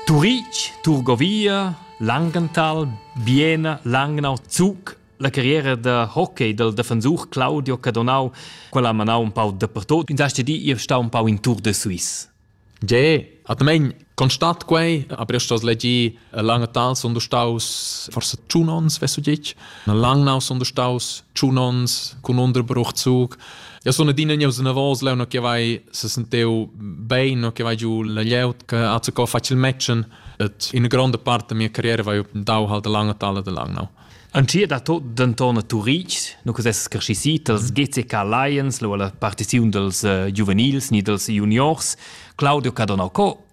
Turitg, Turgovia, Langenthal, Biena, Langnau, Zug, la carriera da hockey dal defensur Claudio Cadonau, quella ha manau un pau dappertut. Ins ha stedi ir stau un pau in tour de Suisse. Ge, atmain constat quei, aber io sto legir Lange Tal sono staus forse tschun ons, weißt du dich? Lang now sono staus tschun ons con Unterbruch zug. Ja sono dine gneu se navos leu no che vai se senteu bein no che vai giu la lieut che hat se co facil matchen et in grande parte mia carriera vai dau halt lange Tal de lang now. An ti da tot denton a Turitg, no cos esses cresci dals GCK Lions, lo alla partiziun dels uh, giuvenils ni dels juniors, Claudio Cadonacco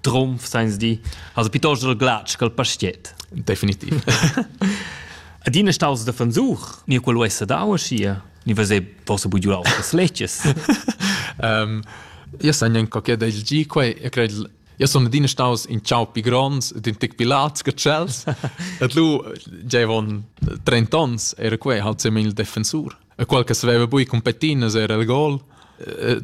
trumf seins di also piuttosto der glatsch col pastiet definitiv Ad ina staus da fansuch, ni quel uessa dau schia, ni vese possa bugiulau das leches. um, io san gnanca che da il gi quei, io cred io sono adina staus in ciao pi gronds ed in tec pi lats che tschels. Et lu giavon 30 ons era quei halt semil defensur. e qual che saveva bui competinas era il gol.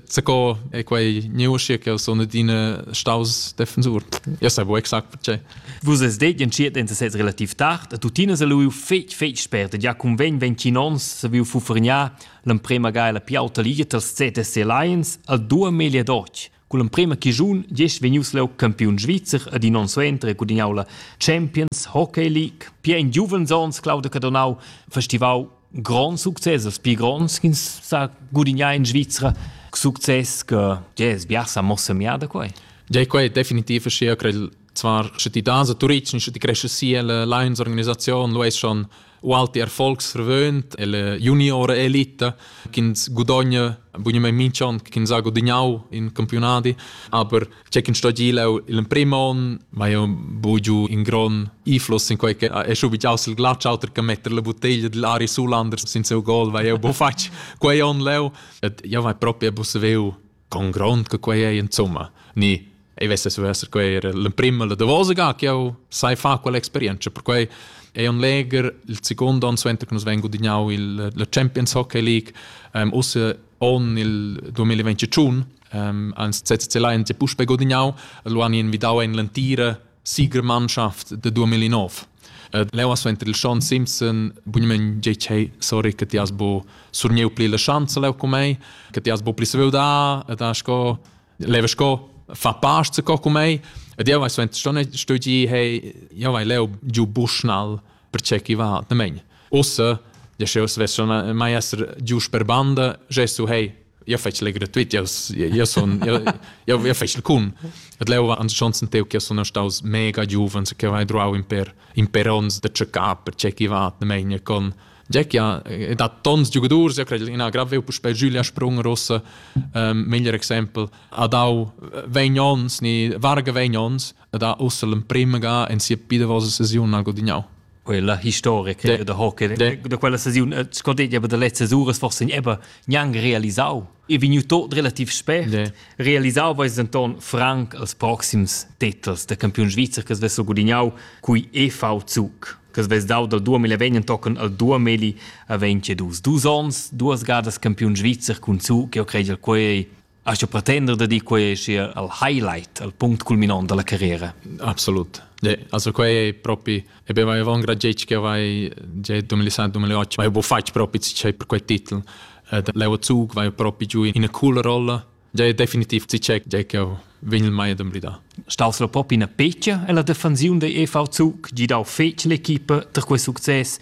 Zaco e quei neuschi che sono adina staus defensor. Io sai bu exact perché. Vus es det entschiet en sez relativ tard, e tuttina se lu fetg fetg spert, ja cum ven ventgin ons se viu fuffergnar l'emprema ga la piauta liga tals ZSC Lions al dua melia d'och, Con l'emprema chischun gest vegnius leu campiun svizzer ed in onn suenter gudignau la Champions Hockey League. Pia in giuvens onns Claudio Cadonau festivau grand success, els pli gronds ch'ins sa gudignar in Svizra. Success che yes, bia sa mossa miada quei. Jai quei definitiv sia crei zwar sche ti das a Turitg, sche ti cresce sia la Lions organisazion, lu es schon Walter Volksverwöhnt, la juniora elita, ch'ins gudogna bunamain minch'on, ch'ins ha gudagnau in campionadi, aber c'è ch'in sto gilau il prim on, ma io bugiu in gron iflos in quei che è schu bigiaus il glatsch auter che metter la bottiglia dell Ari Sulander sin seu gol, weil io bo fatg quei on leu, et io vai proprio a buseveu con grond che quei ei insomma ni ei vessas vesser quei era l'emprema la davosa ga che jau sai fa quell'experienza perquei è un leger il secondo anno suenter che nus vengo dignau il la Champions Hockey League um, usse on il 2021 um, ans CCC Lions e puspe godignau lo han invidau en l'entira Siegermannschaft da 2009. Uh, leu as venter il Sean Simpson, bugnament tgei chei, sorry, che ti has bo surnieu pli la schanza leu cu mei, che ti has bo pli sveu da, ed ha sco, leva sco, fa past se co cu mei, ed jeu vai so sto studi, hey, jeu vai leu giu Bushnall, perché chi va atnamaing. Ussa, ja sch'eu svessa mai esser gius per banda, gesu hei, io fetsch le gratuit, io io sun io io io fetsch cun. Et leu va ans chonsen teu che sun staus mega giuvens che vai druau in per in per ons da tscheccar perché chi va atnamaing con Jack ja dat tons giugadurs, ja cred ina grave puspei Giulia Sprung rossa, um, meglier exempel, a dau vegn ons ni varga vegn ons, ed ha ussa l'emprima ga en sia pidavosa sesiun ha gudignau. Quella historica de, da hockey de, da quella sesiun scodeglia aber der letzte Sures forse eben niang realisau e vegnu tot relativ spät de. realisau weis Anton Frank als proxims titels der Campion Svizzer che svessel gudignau cui EV Zug che svess dau dal 2020 tocken al 2022 dus ons duas gadas Campion Svizzer cun Zug che ho credel quei Hast du pretender da dir quei sia al highlight, al punct culminant dalla carriera? Absolut. Ja, also quei è proprio e ben vai avon gragetg che vai già 2007-2008 vai bo fatg proprio c'è per quei titel. Ed Leo Zug vai proprio giù in una cool rolla. Ja è definitiv ci c'è già che vegn il mai ad emblidar. Stas la pop in a peccia e la defensiun dei EV Zug gi dau fetg l'equipa da quei succes.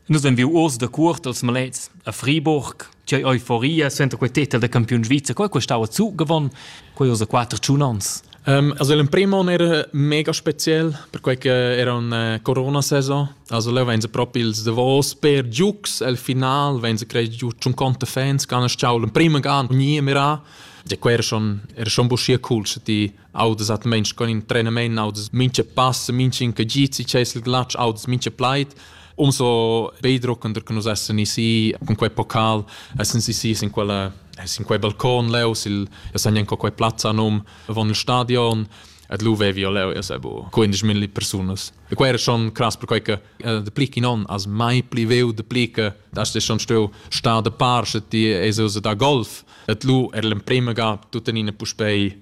Nus ein viu uors da cuort als malets a Friburg. C'ei euforia senta quei titel da campiun svizzer. Quei costau a zu gewonnen. Quei ussa quater tschun ans. Um, also l'emprim on era mega spezial perquei che era una corona saison also leu vein se propi ils davos per giucs al final vein se crei giu schon conte fans kan es ciao l'emprim gan nie mira de quer schon er schon buschia cool ti audas atmeins con in trenament audas mincha pass mincha incagizzi chesel glatsch audas mincha plaid umso beidruckender che nus essen isi con quei pocal essen isi sin quella sin quei balcon leu sil ja san jan quei plazza num von il stadion et lu vevi io leu ja sebo 15.000 persunas e quei era schon krass per quei che de pli in on as mai pli veu de pli che das schon steu sta de parche ti es da golf et lu er l'emprema ga tutta nina puspei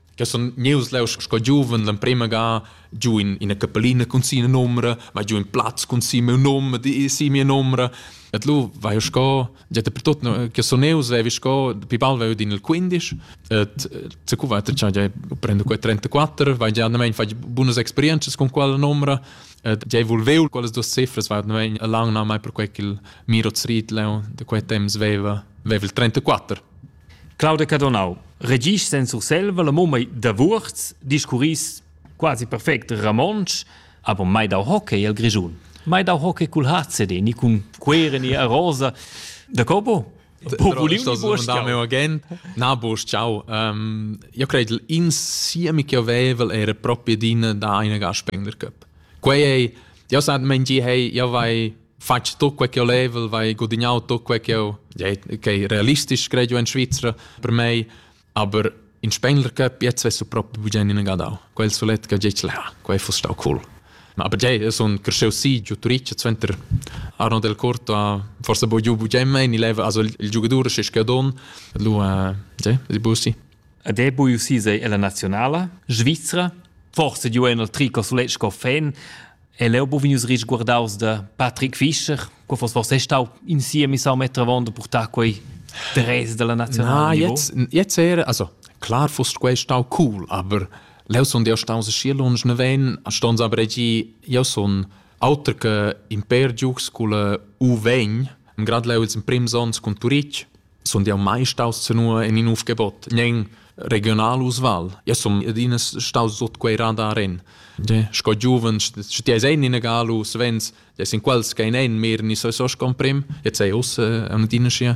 che sun gnieus leu sco giuven l'emprema ga giu in ina capellina cun sia numra, ma giu in plaz cun sia miu num, di sia mia numra. Et lu vai jo sco, già per tot che sun eu, svevi sco, pi bal vai in il 15, et se cu va già già prendo quei 34, vai già andamein fai bunas experienzas con quella numra, et già volveu quelles duas cifras vai andamein a lang na mai per quei che il Miro Zriet leu de quei temps veva, veva il 34. Claudia Cadonau. Regis sen Surselva la mumma da Wurz discurris quasi perfect Ramonsch, aber mai dau hockey al Grischun. Mai dau hockey cul HCD, ni cun quere ni a rosa. Da copo? Na bosch ciao io credo insieme che avevel era proprio din da eine Gaspender Cup quei ei io sa men gi hey io vai fatg tut quei che olevel, vai gudignau tut quei che eu, ja, okay, realistisch credo in Svizzera per me, aber in Spengler Cup jetzt wärst du proprio bugen in Gadau. Quel solet che gietz ha, quei fosse stau cool. Aber ja, es un cresceu si giu Turic zenter Arno del Corto a forse bo giu bugen mein, il leva also il giocatore che scadon, lu a ja, di busi. Ed è bu si sei la nazionala Svizzera, forse giu en il trico sulet sco fan, E leu buc vegnius risguardaus da Patrick Fischer. Co foss forse stau in siemi sau meter avon da purtar quei dress della nazionale? Na, jetzt, jetzt era, also klar foss quei stau cool, aber leu son io staus schi lunsch ne ven, stons aber gi, io son auter che imper giugs cul U ven, grad leu ils in prims ons cun Turich, Sun jau mai staus senua in in uf gebot, nen regional usval. Ja sun adina staus sut quei radar en. Ja, sco giuven, sche ti eis ein in galu, svens, ja sin quels che ein ein mehr ni so so comprim, jetzt sei us an adina schi.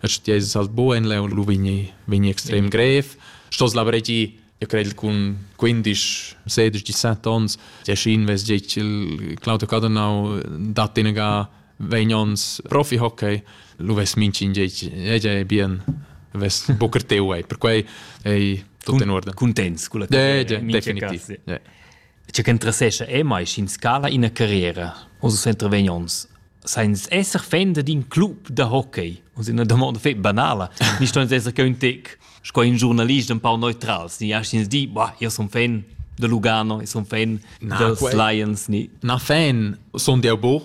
Sche ti eis halt bo en leu, lu vegni vegni extrem grev. Stos la bregi Eu cred cun 15, 16, 17 ons, tgei schi invest tgei Claudio Cadenau dat inega 20 ons profi-hockey, lu vess mincin tgei bien vess bucr teu ei. Per quei ei tutto in ordine. Contents con la yeah, yeah, definitiv. Yeah. Tgei ch'interessescha ei mai sch'ins scala ina carriera uss uss intervegn onns sainz esser fan d'in club da hockey uss ina damonda fetg banala ni ston ins esser cheu in tec sco in giurnalist empau neutrals ni astgins dir bah io sun fan da Lugano io sun fan na, dals quei, Lions ni na fan sun jau bo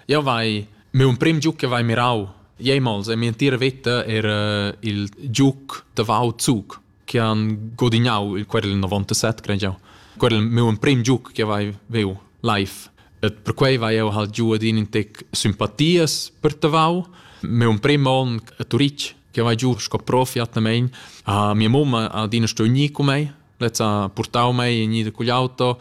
io vai meu emprim giug che vai mirau Jemals e mia entira veta era il giug da Vau Zug che han godignau il querel 97, credo jau. Querel meu emprim giug che vai veu live. Et perquei vai eu halt giu ad in tec simpatias per tavau. Meu emprim on a Turitg, che vai giu sco profi atnamein, a mia mamma ad ina sto ugni cu mei, lezza portau mei in ida cugl auto,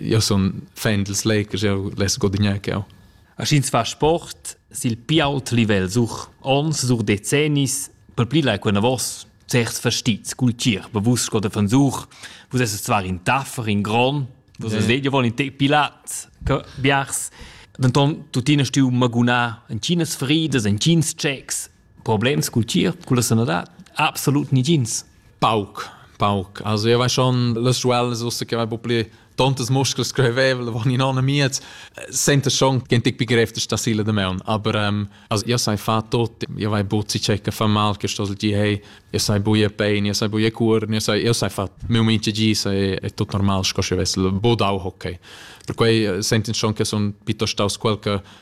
Io sun fan dils Lakers, eu less guadagnar che eu. Aschins fa sport sil pi ault livel such ons, such decennis, per pli lai quena vos certs verstits cultier, be vus sco de Fansuch, vus esses zwar in taffer, in gron, vus yeah. vet, io vol in te pilat, biars. Denton, tuttina stiu magunà en Chinas fridas, en Chins checks, Problems cul tgierp, culla sanadad? Absolut nigins. Pauc, pauc. Also io vai schon las schuellas ussa che vai po pli tontas muscles screvevel van in anna miez senta schon gen tic begriff da sila de meun aber um, also io sai fa tot io vai buzzi checa fa mal che sto gi hey io sai buie pain io sai buie cur io sai io sai fa meu mince gi sai è tot normal sco se vessel bodau hockey per quei senten schon che son pito staus quel che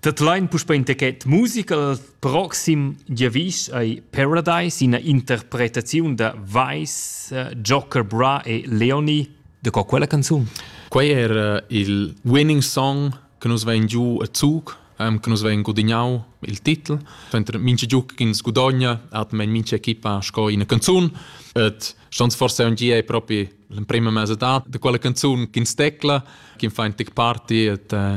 Dat lain puspei in techet musica al proxim giavisch ei Paradise ina interpretaziun da Weiss, eh, Joker Bra e Leoni. De co quella canzun? Quei era il winning song che nus vein giu a Zug ähm, che nus vein gudignau il titel. Fentre mince giu ch'ins gudogna hat mein mince equipa sco ina canzun et stans forse un gie propri l'emprima mesa da de quella canzun ch'ins tecla ch'in fa in tic party et äh,